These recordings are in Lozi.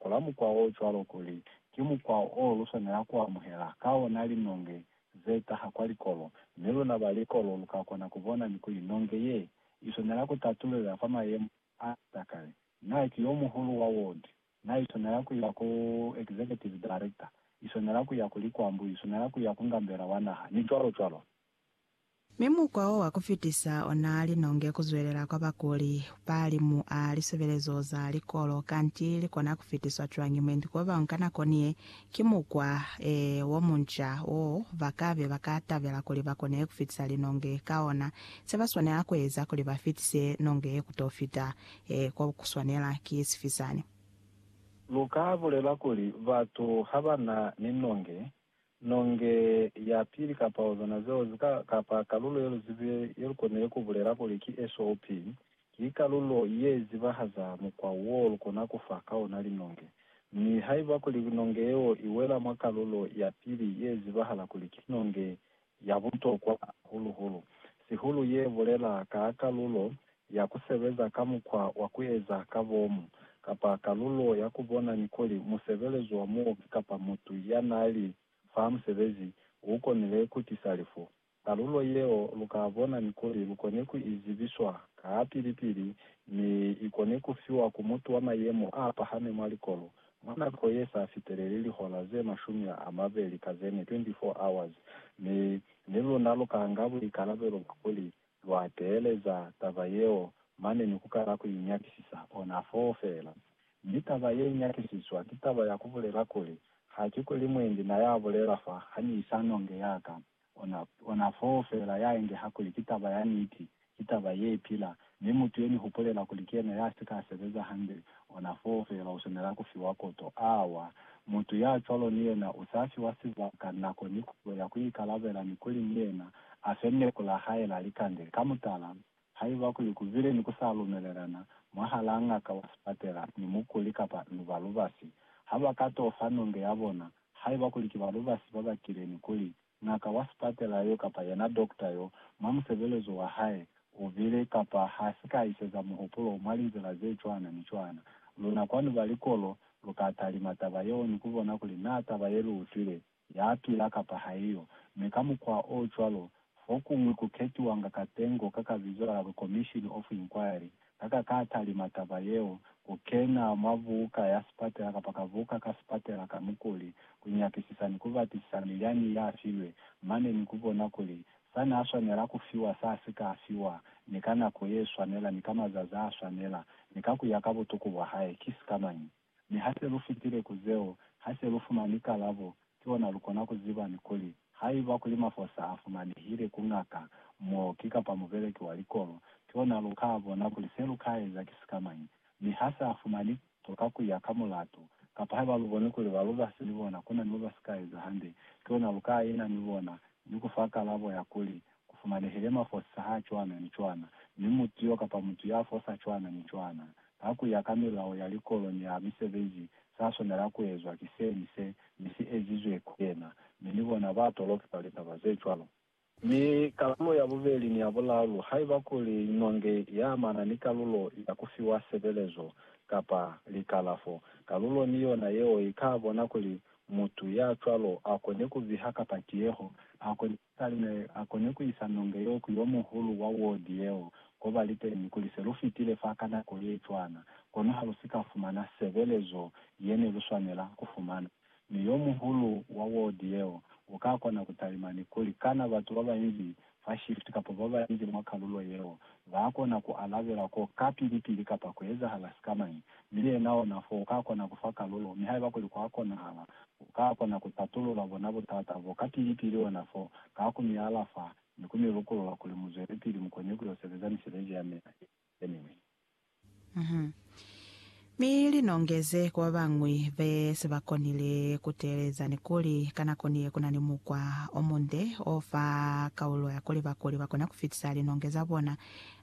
Kola mukwa o cwalo kuli ki mukwa o lu swanela ku amuhela ka ona linonge ze taha kwa likolo, mi luna ba likolo lu ka kona ku bona ni kuli nonge ye i swanela ku tatulela fa mayemo a za kale. Na ki yo muhulu wa ward. Na i swanela ku ya ku executive director, i swanela ku ya ku likwambu, i swanela ku ya ku ngambela wa naha, ni cwalo cwalo. Mi mukwa o wa ku fitisa o naa li nonge ku zwelela kwa bakuli ba li mu a lisebelezo za likolo. Kanti li kona ku fitiswa cwañi mwendi k'o bañwi ka nako ni ye? Ki mukwa, ee, wo munca wo ba ka be ba ka tabela kuli ba kone ku fitisa linonge ka ona. Se ba swanela ku eza kuli ba fitise nonge ye ku t'o fita, ee, ko ku swanela ki sifi sani. Lu ka bulela kuli batu ha ba na ni nonge nonge ya pili kapa hozona zeo zi ka, kapa kalulo ye lu zibe ye lu konile ku bulela kuli ki SOP, ki kalulo ye zibahaza mukwa wo lu kona ku fa ka ona linonge. Mi haiba kuli nonge yeo i wela mwa kalulo ya pili ye zibahala kuli ki nonge ya butokwa hahulu-hulu, sihulu ye bulela ka kalulo ya ku sebeza ka mukwa wa ku eza ka bomu, kapa kalulo ya ku bona ni kuli musebelezi wa muoki kapa mutu ya n'a li fa musebezi u konile ku tisa lifu. Kalulo yeo lu ka bona ni kuli lu kone ku i zibiswa ka pili-pili mi i kone ku fiwa ku mutu wa mayemo a pahami mwa likolo Mwa nako ye sa fiteleli lihora ze mashumi a mabeli ka ze ne, 24 hours, mi ni luna lu ka nga buikalabelo bwa kuli lwa teeleza taba yeo mane ni ku kala ku i nyakisisa, ona foo feela. Mi taba ye nyakisiswa ki taba ya ku bulela kuli, Ha ki kuli mwendi na ya bulela fa, ha ni isa nonge ya ka, Ona, ona foo feela ya engeha kuli ki taba ya niti, ki taba ye pila, mi mutu ye ni hupulela kuli ki yena ya si ka sebeza hande, ona foo feela u swanela ku fiwa koto. Awa, mutu ya cwalo ni yena u sa fiwa sibaka, nako, ni kuzo ya ku ikalabela, ni kuli ni yena a fe neku la hae la likande. Ka mutala, Haiba kuli kubile ni ku sa lumelelana mwahalaa ngaka wa sipatela ni mukuli kapa ni balubasi, ha ba ka t'o fa nonge ya bona. Haiba kuli ki balubasi ba bakile ni kuli, ngaka wa sipatela yo kapa yena dokta yo, mwa musebelezo wa hae, u bile kapa ha si ka iseza muhupulo mwa linzila ze cwana ni cwana, luna kwanu ba likolo lu ka talima taba yeo ni ku bona kuli naa taba ye lu utwile ya pila kapa haiyo, mi ka mukwa o cwalo, fokuñwi ku ketiwanga katengo ka ka bizo la Commission of Inquiry, ka ka ka talima taba yeo, ku kena mwa buka ya sipatela kapa ka buka ka sipatela ka mukuli, ku nyakisisa ni ku batisisa milyani ya filwe, mane ni ku bona kuli sa n'a swanela ku fiwa sa si ka fiwa, ni ka nako ye swanela, ni ka mazazi a swanela, ni ka ku ya ka butuku bwa hae, ki sikamañi. Mi ha se lu fitile ku zeo, ha se lu fumani kalabo, ki ona lu kona ku ziba ni kuli, haiba kuli mafosa a fumanehile ku ngaka, muoki, kapa mubeleki wa likolo, ki ona lu ka bona kuli se lu ka eza ki sikamañi. Mi ha sa fumani, to ka ku ya ka mulatu. Kapa haiba lu boni kuli ba lubasi ni bona ku na ni mo ba si ka eza hande, ki ona lu ka ina ni bona, ni ku fa kalabo ya kuli, Ku fumanehile mafosa h'a cwana ni cwana, mi mutu y'o kapa mutu y'a fosa cwana ni cwana, ka ku ya ka milao ya likolo ni ya misebezi, s'a swanela ku ezwa ki se ni se, mi si ezizwe ku yena. Mi ni bona ba toloki kwa litaba ze cwalo. Mi kalulo ya bubeli ni ya bulalu, haiba kuli nonge ya amana ni kalulo ya ku fiwa sebelezo kapa likalafo, kalulo ni yona yeo i ka bona kuli mutu ya cwalo a kone ku biha kapa tiyeho, a kone Kale ne a kone ku isa nonge yeo ku yo muhulu wa wodi yeo ko ba li teñi kuli se lu fitile fa ka nako ye cwana, kono ha lu si ka fumana sebelezo ye ne lu swanela ku fumana. Mi yo muhulu wa wodi yeo u ka kona ku talima ni kuli, Kana batu ba banzi fa shift kapa ba banzi mwa kalulo yeo ba kona ku alabela ko kapili-pili kapa ku ezahala sikamañi? Mi yena ona fo uka kona kufa kalulo, mi haiba kuli kwa konahala, uka kona ku patulula bona butata bo ka pili pili ona fo, ka ku mi alafa, ni ku mi lukulula kuli mu zwelepili mu kone ku yo sebeza misebezi ya mina ye miñwi. Uhum. Mi li nongeze ku babañwi be si ba konile ku teeleza ni kuli, ka nako ni ye ku na ni mukwa o munde o fa kaulo ya kuli bakuli ba kona ku fitisa linonge za bona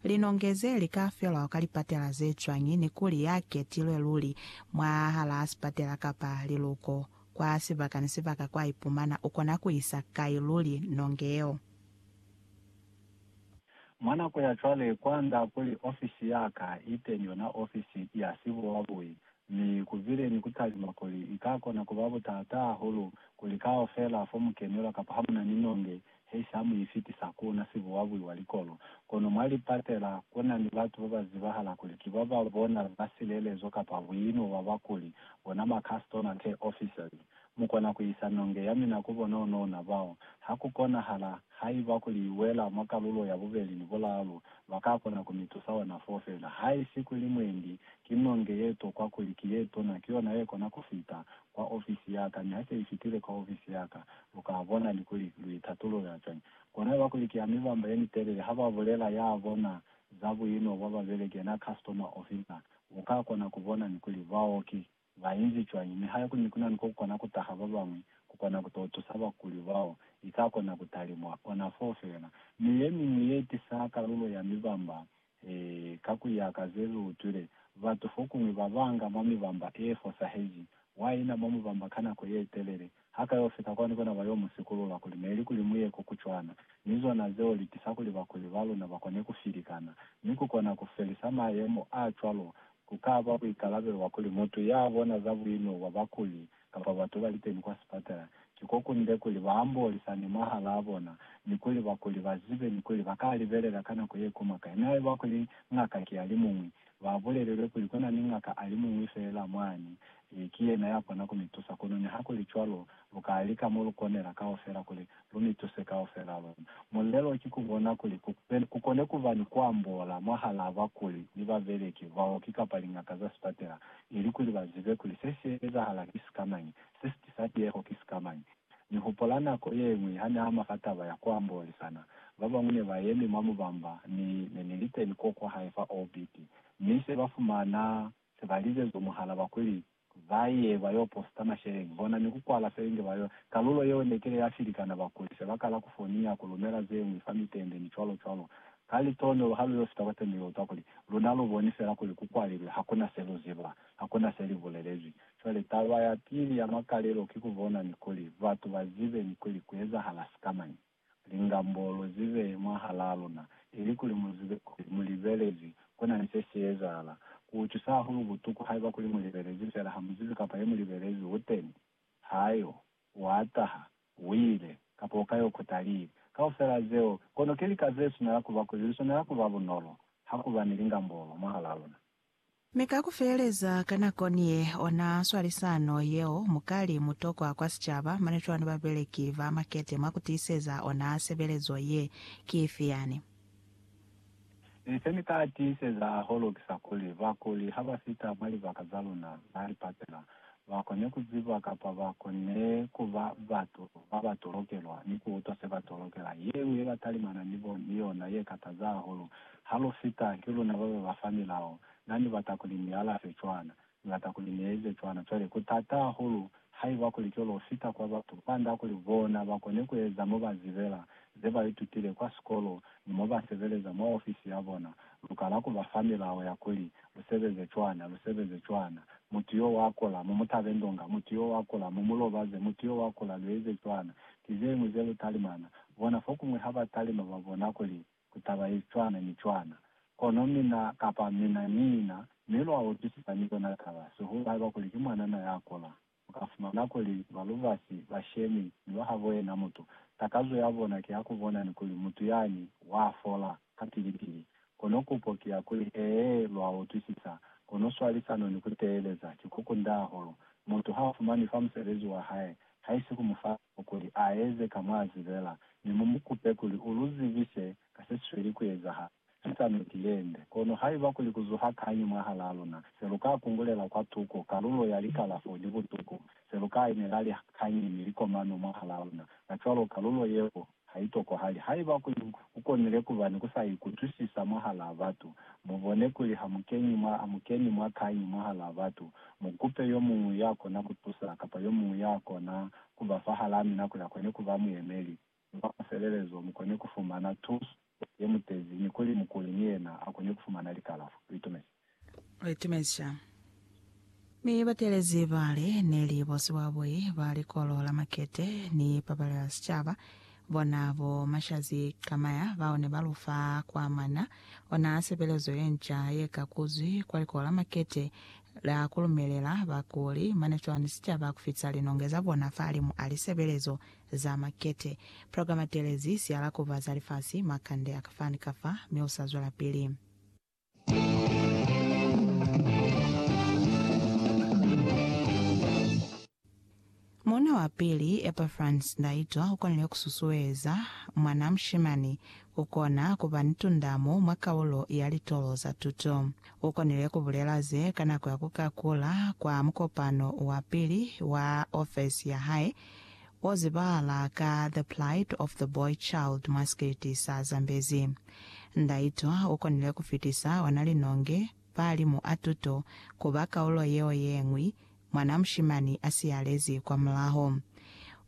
Linonge ze li ka felwa ka lipatela ze cwañi ni kuli ya ketilwe luli mwahalaa sipatela kapa liluko kwa sibaka ni sibaka kwa ipumana u kona ku isa kai luli nonge yeo? Mwa nako ya cwale, kwa nga kuli ofisi ya ka i teñi yona ofisi ya sibuwabui, mi ku bile ni ku talima kuli i ka kona ku ba butaataa hahulu kuli kaufela fo mu kenelwa kapa ha mu na ni nonge he sa mu ifitisa ku na sibuwabui wa likolo. Kono mwa lipatela, ku na ni batu ba ba zibahala kuli ki ba ba bona ba silelezo kapa buino bwa ba kuli bona ma customer care officers. Mu kona ku isa nonge ya mina ku bona onouna bao. Ha ku konahala, haiba kuli i wela mwa kalulo ya bubeli ni bulalu, ba ka kona ku mi tusa ona foo fela. Haisi kuli mwendi ki nonge ye tokwa kuli ki ye tuna, ki yona ye kona ku fita, kwa ofisi ya ka, niha se i fitile kwa ofisi ya ka, lu ka bona ni kuli lu i tatulula cwañi. Kona iba kuli ki ya mibamba ye mitelele, ha ba bulela ya bona za buino bwa babeleki, yena customer officer, u ka kona ku bona ni kuli baoki ba inzi cwañi. Nihaike kuli ni ku na ni ko ku kona ku taha ba bañwi ku kona ku to tusa bakuli bao, i ka kona ku talimwa ona foo fela. Mi ye miñwi ye tisa kalulo ya mibamba Ee, ka ku ya ka ze lu utwile, batu fokuñwi ba banga mwa mibamba e fosaheji, wa ina mwa mubamba ka nako ye telele, ha ka yo fita kwani kona ba yo mu sikulula kuli neli kuli mu ye ko ku cwana, mi zona zeo li tisa kuli bakuli ba luna ba kone ku filikana. Mi ku kona ku felisa mayemo a cwalo, ku ka ba buikalabelo bwa kuli mutu ya bona za buino bwa bakuli kapa batu ba liteni kwa sipatala, ki ko kunde kuli ba ambolisane mwahalaa bona, ni kuli bakuli ba zibe ni kuli ba ka libelela ka nako ye kuma kai. Mi haiba kuli ngaka ki ya limuñwi, ba bulelelwe kuli ku na ni ngaka a limuñwi feela mwani, ki yena ya kona ku mi tusa. Kono nihakulicwalo, lu ka lika mo lu konela kaufela kuli Lu ni tuse kaufela luna. Mulelo ki ku bona kuli ku be, ku kone ku ba ni ku ambola mwahalaa bakuli ni babeleki, baoki kapa liñaka za sipatela, ilikuli ba zibe kuli se si ezahala ki sikamañi, se si tisa tieho ki sikamañi. Ni hupola nako yeñwi ha ni ama ka taba ya ku ambolisana. Ba bañwi ne ba yemi mwa mubamba, mi ne ni liteni kwo kwa hae fa OBT. Mi se ba fumana se ba lize zwa muhala, ba kuli, Ba ye ba yo posta masheleñi bona ni ku kwala selingi ba yo. Kalulo yeo ne kile ya filikana bakuli se ba kala ku foniya, ku lumela ze ñwi fa mitende, ni cwalo cwalo. Ka litonolo ha lu yo fita kwa teni lu utwa kuli, Luna lu boni fela kuli ku kwalilwe, ha ku na se lu ziba, ha ku na se li bulelezwi. Cwale taba ya pili ya makalelo ki ku bona ni kuli batu ba zibe ni kuli ku ezahala sikamañi. lingambolo ze behe mwahalaa luna, ilikuli mu zibe kuli mu libelezi ku na ni se si ezahala. Ku utusa hahulu butuku haiba kuli mu libelezi fela ha mu zibi kapa ye mu libelezi u teni, ha yo, wa taha, u ile, kapa u ka yo kuta lii. Kaufela zeo, kono ki lika ze swanela kuba kuli li swanela kuba bunolo ha ku ba ni lingambolo mwahalaa luna. Mi ka ku feleza, ka nako niye ona swalisano yeo, mukali, mutokwa kwa sicaba, mane cwani babeleki ba makete mwa ku tiiseza ona sebelezo ye? Ki ifi yani? Mi se ni ka tiiseza hahulu kisa kuli, bakuli ha ba fita mwa libaka za luna, ba li patela. ba kone ku ziba kapa ba konile ku ba batu ba ba tolokelwa ni ku utwa se ba tolokela. Ye ñwi ye ba talimana ni bo ni yona ye kataza hahulu ha lu fita ki luna ba ba ba fa milao, Na ni bata kuli ni alafe cwana. Ni bata kuli ni eze cwana. Cwale, ku tata hahulu haiba kuli ki lo fita kwa batu kwand'a kuli bona ba kone ku eza mo ba zibela, ze ba itutile kwa sikolo, ni mo ba sebeleza mwa ofisi ya bona. Lu kala ku ba fa milao ya kuli Lu sebeze cwana, lu sebeze cwana. Mutu yo wa kula, mu mu tabe ndonga. Mutu yo wa kula, mu mu lobaze. Mutu yo wa kula, lu eze cwana. Ki zeñwi ze lu talimana. Bona, fokuñwi ha ba talima ba bona kuli ku ta ba ye cwana ni cwana. Kono mina, kapa mina ni ina, mi lwa utwisisa ni yona taba, sihulu haiba kuli ki mwanana ya kula. u ka fumana kuli ba lubasi ba shemi ni ba habo yena mutu. Takazo ya bona ki ya ku bona ni kuli mutu yani wa fola kapili-pili. Kono kupo ki ya kuli, Ee, lwa utwisisa. Kono swalisano ni ku teeleza ki ku kunda hahulu. Mutu ha fumanwi fa musebezi wa hae, haisi ku mu fa nako kuli a eze ka mwa zibela, mi mu mu kupe kuli u lu zibise ka se si sweli ku ezahala. ki sa niti yende. Kono haiba kuli ku zuha kañi mwahalaa luna, se lu ka kungulela kwa tuko kalulo ya likalafo ni butuku ze lu ka inela li kañi ni likomano mwahalaa luna, kacwalo kalulo yeo ha i tokwahali. Haiba kuli ku konile ku ba ni ku sa ikutwisisa mwahalaa batu, mu bone kuli ha mu keñi mwa, ha mu keni mwa kañi mwahalaa batu, mu kupe yo muñwi ya kona ku tusa, kapa yo muñwi ya kona ku ba fahalaa mina kuli a kone ku ba muyemeli. ni mwa mafelelezo mu kone ku fumana tuso ye mu tezi ni kuli mukuli ni yena a kone ku fumana likalafo. Litumezi. Litumezca. Ni batelezi bale ne li bo siwabui ba Likolo la Makete ni Pabalelo ya Sicaba, bona bo Mashazi Kamaya, bao ne ba lu fa kwa mana ona sepelezo ye nca ye ka kuzwi kwa Likolo la Makete la ku lumelela bakuli mane cwani sicaba ku fitisa linonge za bona fahalimu a lisebelezo Za makete. Programa telezi si alakuba za lifasi, makande a ka fa ni ka fa, mi u sa zwelapili. Muuna wa pili, Epafrans Ndaitwa, ukonile kususueza mwanaa mushimani kukona kuba ni tundamo mwa kaulo ya litolo za tuto. Ukonile kubulela ze ka nako ya kukakula kwa mukopano wa pili wa ofesi yahae o zibahala ka The Plight of the Boy Child mwa sikiliti sa Zambezi. Ndaitwa u konile ku fitisa ona linonge fa limu a tuto ku ba kaulo yeo ye ñwi mwana mushimani a siyalezi kwa mulaho.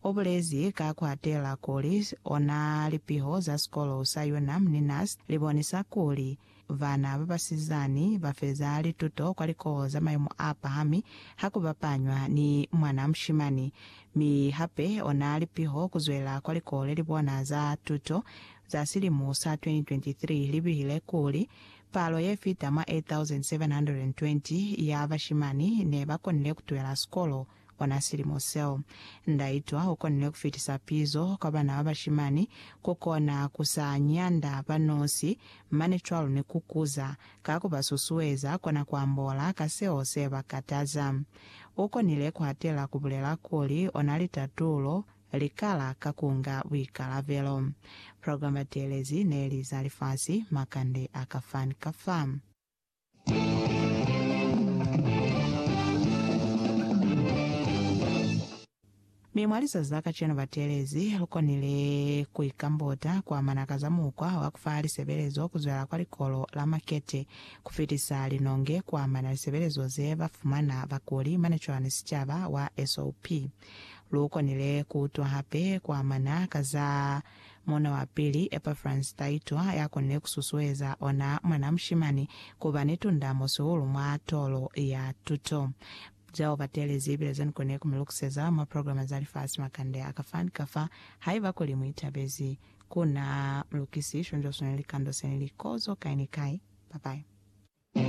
U bulezi ka ku hatela kuli ona lipiho za sikolo sa Unam ni NUST li bonisa kuli, Bana ba basizani ba feza lituto kwa likoho za mayemo a pahami ha ku bapanywa ni mwana mushimani, mi hape ona li piho ku zwelela kwa likoho le li bona za tuto za silimo sa 2023 li bihile kuli, Palo ye fita mwa 8,720 ya bashimani ne ba konile ku twela sikolo, Ona silimo seo, ndaitwa ukonile kufitisa pizo kwa bana ba bashimani, kukona kusa nyanda ba nosi, mane cwalo ni kukuza, ka kuba susueza kona kuambola ka seo se ba kataza. Ukonile kuhatela kubulela kuli onali tatulo, likala ka kunga buikalabelo. Program Batelezi neli za lifasi, makande a ka fan ka fa. Mi mwa lizazi la kacenu batelezi lu konile ku ikambota ku amana ka za mukwa wa ku fa lisebelezo ku zwela kwa Likolo la Makete ku fitisa linonge ku amana lisebelezo ze ba fumana bakuli mane cwani sicaba wa SOP. Lu konile ku utwa hape ku amana ka za Muuna wa pili, Epafrasi Taito, ya konile ku susueza ona mwanaa mushimani ku ba ni tundamo sihulu mwa tolo ya tuto. Zeo ba teelezi ibile ze ni konile ku mi lukuseza mwa programa za lifasi makande a ka fa ni ka fa, haiba kuli mu itabezi. Ku na lukisi shonzwa sona likando se ni li kozo kai ni kai. Bye-bye.